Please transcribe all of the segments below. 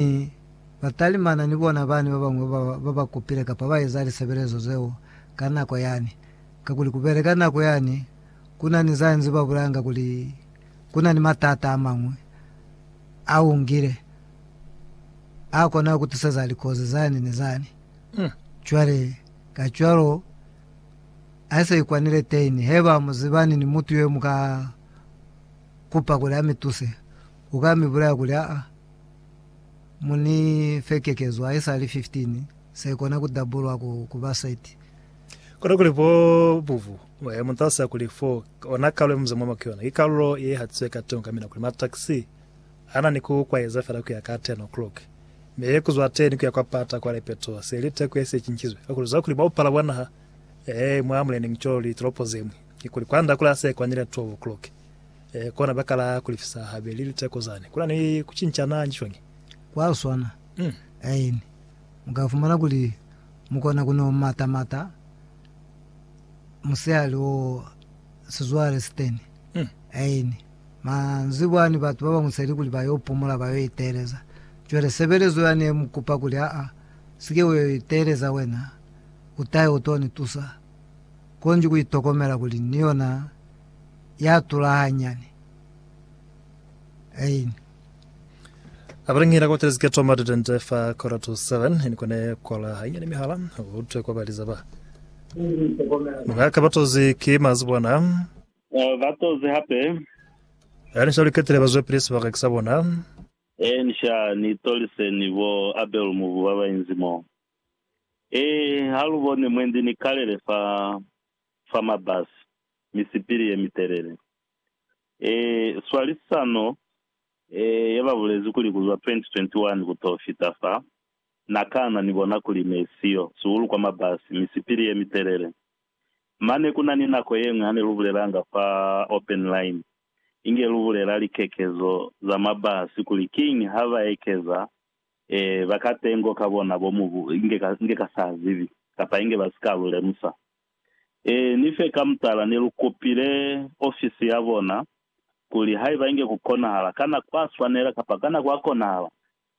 Mi batalimana ni bona bani babañwi babakupile kapa baeza lisebelezo zeo ka nako yani, kakuli kubele ka nako yani kuna ni zanzi babulanga kuli kuna ni matata amañwi aungile akona kutiseza likozi zani ni zani. Cwale, kacwalo, aise ikwanile tein, heba muzibani ni mutu yomuka kupa kuli amituse. U ka mi bulaya kuli, Aa, mu ni fe kekezo haisali 15, se kona ku dabulwa ku, ku ba 30. Kona kuli bo bubu, he, mu talusa kuli fo, ona kalulo ye mu za mwa mwa yona, ki kalulo ye ihatize ka teño ka mina, kuli mataxi a na ni ku kwaeza fela ku ya ka 10 o'clock, mi ku zwa teni ku ya kwa pata kwa Lepeto, se li teko ye si ye cincizwe, kakuli zwa kuli ba upala bwa naha, ee, mwa muleni, cwalo li tolopo ze ñwi. Kikuli kwa nda kula se kwanile 12 o'clock, e kona ba kala ku lifisa habeli liteko zani. Kuna ni ku cincana nji shwangi? Kwa swana. Mm. Aini. Mu ka fumana kuli mu kona ku no mata mata musihali o sizwale siteni. Mm. Aini. Manzibwa ni batu ba bañwi seli kuli ba yo pumula, ba yo iteleza. Cwale sebelezo ya ne mu kupa kuli, Aa, si ke wa yo iteleza wena, u ta yo to ni tusa. Konji ku itokomela kuli ni yona ya tula hanyani. Ein. Apre ngina kwa telezi ke toma ditente fa quarter to seven, ni kone kwala hanyani mihala, ku utwe kwa baliza ba. Nga ka batozi ki mazibona. Eh, batozi hape. Ya ni shaliketile ba zwepili sibaka ki sa bona. Ensha ni tolise ni bo Abel Mubu ba ba inzi mo. Ee, ha lu boni mwendi ni kalele fa, fa mabasi, misipili ye mitelele. Ee, swalisano e ye ba bulezi kuli ku zwa 2021 ku to fita fa, na kana ni bona kuli ne si yo sihulu kwa mabasi, misipili ye mitelele. Mane ku na ni nako ye ñwi ha ne lu bulelanga fa Open Line, inge lu bulela likekezo za mabasi kuli kiñi ha ba ekeza Ee, ba ka tengo ka bona bo mubu inge ka, inge ka sa zibi, kapa inge ba si ka lu lemusa. Ee, ni fe ka mutala ne lu kopile ofisi ya bona, kuli haiba inge ku konahala, kana kwa swanela, kapa kana kwa konahala,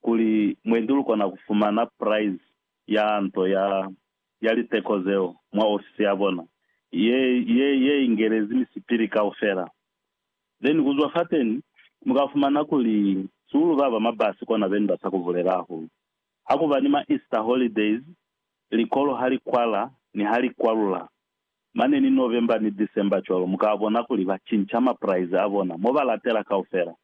kuli mwendi lu kona ku fumana prize ya nto ya, ya liteko zeo mwa ofisi ya bona, ye, ye, ye ingelezi misipili kaufela. Then kuzwa fateni mukafumana kuli sulu baba mabasi kona beni basa kuvulelaho. Hakuba ni ma Easter holidays, likolo halikwala ni halikwalula, mane ni November ni December cwalo mukabona kuli bacinca ma price abona mobalatela kaufela.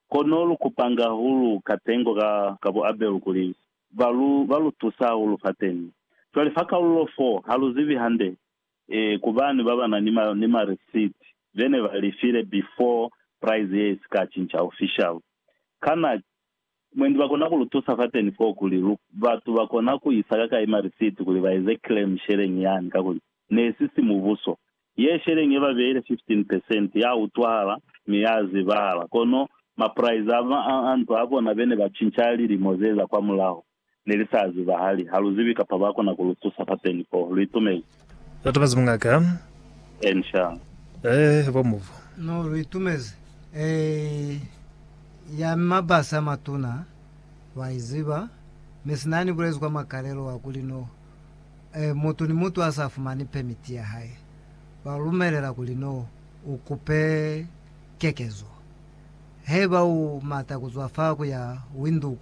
Kono lukupanga hahulu katengo ka ka buabelu kuli balu balutuse hahulu fateni. Cwale fa kalulo 4 haluzibi hande Ee, ku bani baba na ni, ni ma receipt be ne ba lifile before price ye si ka cinca official? Kana mwendi ba kona ku lu tusa fateni foo kuli lu, batu ba kona ku isa ka kai ma receipt kuli ba eze claim sheleñi yani? Kakuli ne si si mubuso. Ye sheleñi ye ba beile 15 percent, ya utwahala mi ya zibahala. Kono ma price a, a, a nto a bona be ne ba cinca lilimo ze za kwa mulaho. ne li sa zibahali, ha lu zibi kapa ba kona ku lu tusa fateni fo. Lu itumezi? Lu itumezi mungaka? Eeni, sha. Eeh, bo muvu. No, lu itumezi. Eeh, ya mabasi a matuna, lwa i ziba, mi sina yani bulezi kwa makalelo wa kuli no, eh, mutu ni mutu a sa fumani pemiti ya hae, lwa lu lumelela kuli no u kupe kekezo. Haiba u mata ku zwa fa ku ya Windhoek,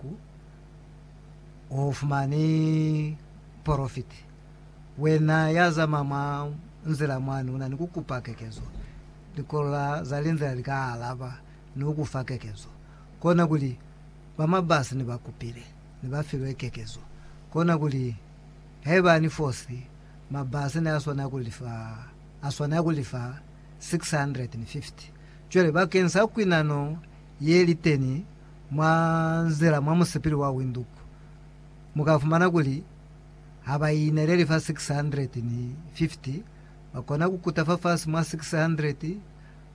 u fumani porofiti, wena ya zama mwa nzila mwani una ni ku kupa kekezo, likola za linzila li ka alaba ni ku ku fa kekezo. Kona kuli, ba mabasi ne ba kupile ni ba filwe kekezo. Kona kuli, haiba ni fosi, mabasi ne a swanela ku li fa, a swanela ku li fa 650. Cwale, bakeñisa kwinano ye li teni Mwa nzila mwa musipili wa Windhoek, mu ka fumana kuli ha ba ineleli fa 650, ba kona ku kuta fafasi mwa 600,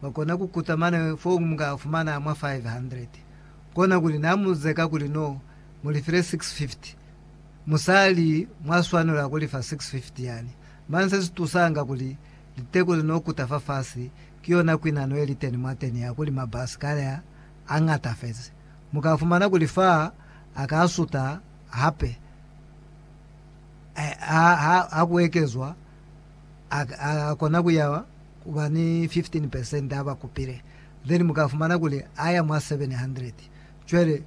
ba kona ku kuta mane foo mu ka fumana mwa 500. Kona kuli na mu zeka kuli no mu li file 650, mu sa li mwa swanela ku li fa 650 yani. Mane se si tusanga kuli liteko li no kuta fafasi, ki yona kwinano ye li teni mwateni ya kuli mabasi kale a a ñatafezi. Mu ka fumana kuli fa a ka suta hape ha ku ekezwa, a ka kona ku ya ku ba ni 15 percent ha ba kupile, then mu ka fumana kuli a ya mwa 700. Cwale,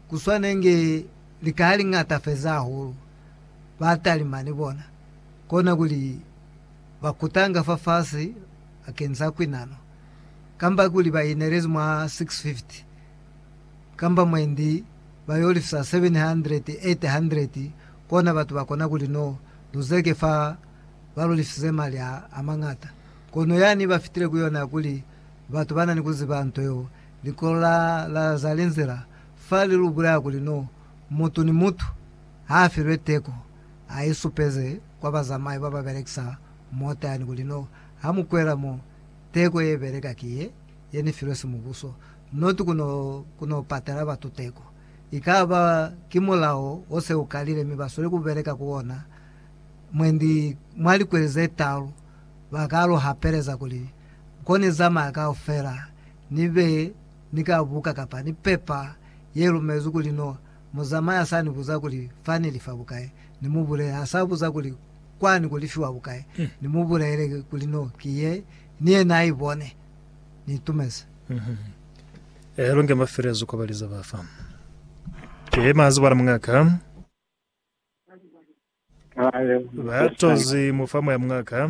ku swanenge lika li ñatafezi hahulu batalima ni bona, kona kuli ba kutanga fafasi bakeng sa kwinano. kamba kuli ba inelezi mwa 650 kamba mwendi ba yo lifisa 700, 800, kona batu ba kona kuli no luzeke fa ba lu lifisize mali a, a mañata. Kono yani ba fitile ku yona ya kuli batu ba na ni ku ziba nto yeo, likolo la, la za linzila fa li lu bulaya kuli no mutu ni mutu ha a filwe teko a i supeze kwa bazamai ba ba belekisa mota yani kuli no ha mu kwela mo, Teko ye beleka ki ye, ye ni filwe simubuso, not ku no, ku no patela batu teko. I ka ba ki mulao o se u kalile mi ba sweli ku beleka ku ona, mwendi mwa likweli ze talu, ba ka lu hapeleza kuli, Ko ni zamaya kaufela, ni be ni ka buka kapa ni pepa ye lumezwi kuli no mu zamaya sa ni buza kuli fa ni li fa bukai, ni mu bulele, ha sa buza kuli, kwani kuli fiwa bukai ni mu bulaele kuli no ki ye ni yena a ibone ni itumezi. Ehe longe mafelezo kwa baliza ba fa. Ke mazi bwana mungaka. Ba tozi mu fa moya mungaka.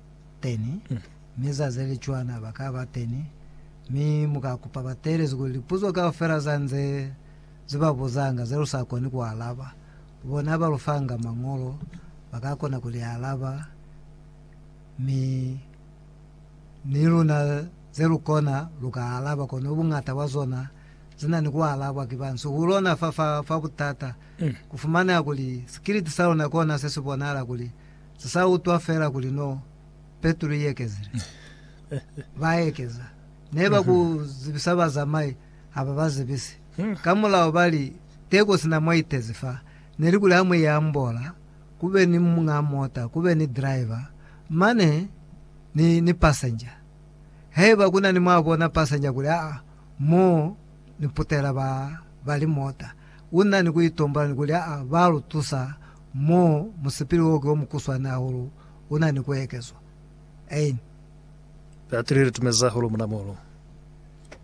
teni, mi za ze li cwana ba ka ba teni, mi mu ka kupa ba teelezi kuli lipuzo kaufela za nze ze ba buzanga ze lu sa koni ku alaba, bona ba lu fanga Mañolo ba ka kona ku li alaba, mi ni luna ze lu kona lu ka alaba, kono buñata bwa zona zi na ni ku alabwa ki ba nsi ku lona. Fa, fa, fa butata ku fumaneha kuli sikiliti sa luna kona se si bonahala kuli Se sa utwa fela kuli no Petro i ekezile. Ba ekeza. Ne ba ku zibisa bazamai ha ba ba zibisi. Ka mulao ba li, Teko sina mwa itezi fa, ne li kuli ha mu i ambola, ku be ni muñ'a mota, ku be ni driver, mane ni, ni passenger. Haiba ku na ni mwa bona passenger kuli, Aa, mo ni putela ba, ba li mota. U na ni ku itombela ni kuli a ba lu tusa mo musipili wo ki wo mukuswani hahulu u na ni ku ekezwa. Ein. Batili i li tumeza hahulu muna mono.